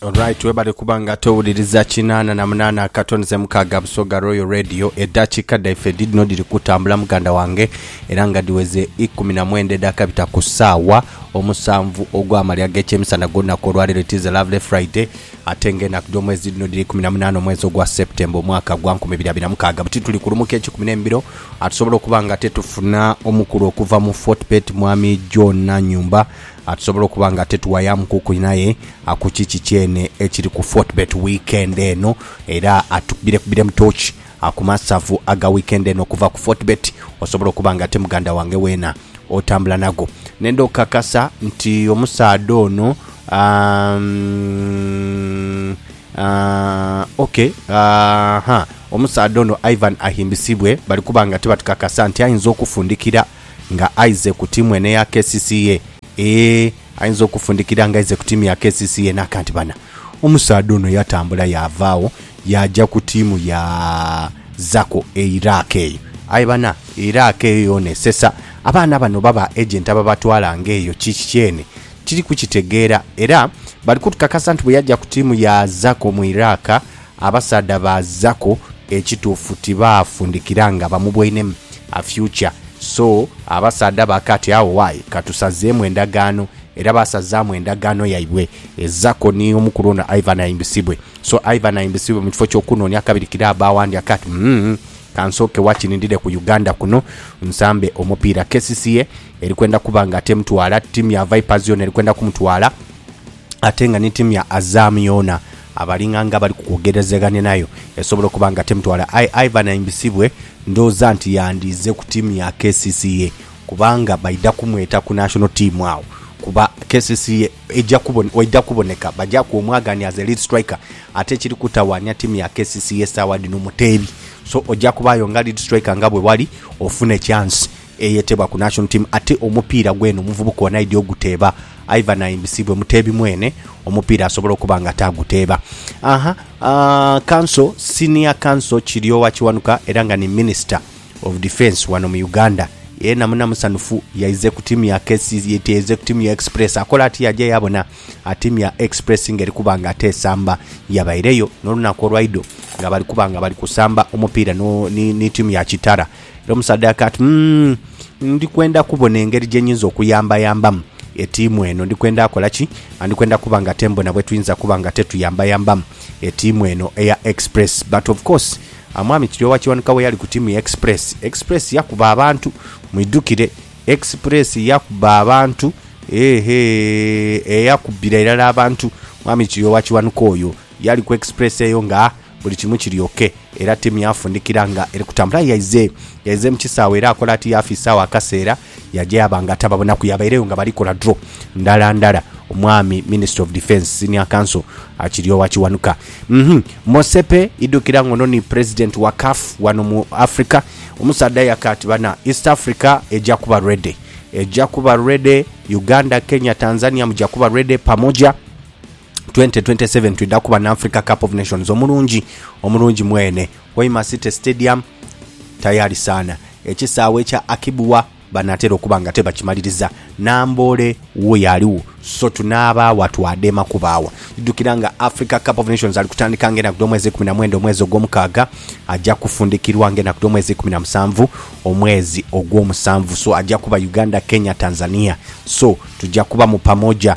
Alright webale kuba nga towuliriza kinana na munana akato nze mukaga busoga royal radio edakika daife didino diri kutambula muganda wange era nga diweze ikumi na mwenda edaka bita ku saawa omusanvu ogwa malya agekyemisana golunaku olwalero it is a lovely friday ate nga enaku dyomwezi didino diri ikumi na munana omwezi ogwa september omwaka gwa nkumi ibiri abiri na mukaga buti tuli kulumuka ekikumi nemibiro atusobola okuba nga tetufuna omukulu okuva mu fortbet mwami john nanyumba A Tusobola okuba nga tetuwayamu kukuli naye a ku kiki kyene ekiri ku Fortebet wiikendi eno. Era a tukubirekubbiremu tooki a ku masavu aga wiikendi eno okuva ku Fortebet. Osobola okuba nga ate muganda wange weena otambula nago. Nenda okukakasa nti omusaadha ono aah, ok, aah-huh, omusaadha ono Ivan Ahimbisibwe bali kuba nga tibatukakasa nti ayinza okufundikira. Nga aize ku timu eno eya kcca. Eeh ayinza okufundikira nga aize ku timu ya kcca naka nti bana omusaadha ono yatambula yava agho yaja ku timu ya Zako e Iraq eyo. Aye bana e Iraq eyo yona esesa. Abaana bano oba ba agent ababatwala nga eyo kiki kyene tiri kukitegeera era bali kutukakasa nti bweyaja ku timu ya Zako mu Iraq, Abasaadha ba Zaku ekituufu tibaafundikira nga bamubwainemu a future so abasaadha ba kati agho why katusazeemu endagaano era baasazaamu endagaano yaibwe e Zako ni omukulu ono Ivan Aimbisibwe so Ivan Aimbisibwe mu kifo ky'okunoonia kabirikira abba awandi akati umm kansooke wakiri ndide ku Uganda kuno nsambe omupiira kcca erikwenda kuba nga temutwala ttiimu ya Vipers yoona erikwenda kumutwala ate nga ni ttiimu ya Azam yoona Abalinga nga abali ku kwogerezaghania nayo esobola okuba nga temutwala aye Ivan aimbisibwe ndhooza nti yandiize ku tiimu ya kcca kubanga baidha kumweta ku national team agho kuba kcca eidha kuboneka bagyaku omwaganhi as a lead striker ate ekiri kutawaanya tiimu ya kcca sawa dhino muteebi so oja kubaayo nga lead striker nga bwe wali ofune chance eyeteebwa ku National Team ate omupiira gwene omuvubuka ono aidhi oguteeba aidha n'ayimbisibwa omuteebi mwene omupiira asobole okuba nga ate aguteeba. Aha Council, Senior Council Kiryowa Kiwanuka era nga ni Minister of Defence wano mu Uganda yeena muna musanhufu yaize ku tiimu ya KCCA teeze ku tiimu ya Express akola ati yaja yaabona tiimu ya Express ng'eri kuba nga ate esamba yabaireyo n'olunaku olwaidho nga bali kuba nga bali kusamba omupiira ni tiimu ya Kitara. Era omusaadha yaka ati, Umm, ndi kwenda kubona engeri gye nyinza okuyambayambamu etiimu eno. Ndi kwenda kola ki? Ndi kwenda kuba nga te mbona bwe tuyinza kuba nga te tuyambayambamu etiimu eno eya Express. But of course, Mwami Kiryowa Kiwanuka bwe yali ku tiimu ya Express, Express yakuba abantu. Mwidhukire, Express yakuba abantu. Heehee, eyakubira irala abantu Mwami Kiryowa Kiwanuka oyo yali ku Express eyo nga. Buli kimu kiri ok era tiimu yaafundikira nga eri kutambula. Yaize yaize mu kisaawe era akola ati yaafiisaawo akaseera yaja yaaba nga tababonaku. Yaabaireyo nga bali kola draw ndala ndala. Omwami Minister of Defence, Senior Counsel, Kiryowa Kiwanuka. Uhmm. Motsepe, idhukira ng'ono ni President wa CAF wano mu Africa. Omusaadha yaka ati bana, East Africa eja kuba ready. Eja kuba ready. Uganda, Kenya, Tanzania muja kuba ready pamoja. 2027 twidha kuba n'Africa Cup of Nations omulungi omulungi mwene, Hoima City Stadium tayari sana, ekisaawe ekya Akibua banaatera okuba nga tebakimaliriza, Namboole wo y'aligho so tunaaba wa twadema kuba wa? Idhukira nga Africa Cup of Nations ali kutandika ng'enaku dh'omwezi ikuminamwenda omwezi ogwomukaaga, aja kufundikirwa ng'enaku dh'omwezi ikuminamusanvu omwezi ogwomusanvu so aja kuba Uganda, Kenya, Tanzania so tuja kuba mu pamoja.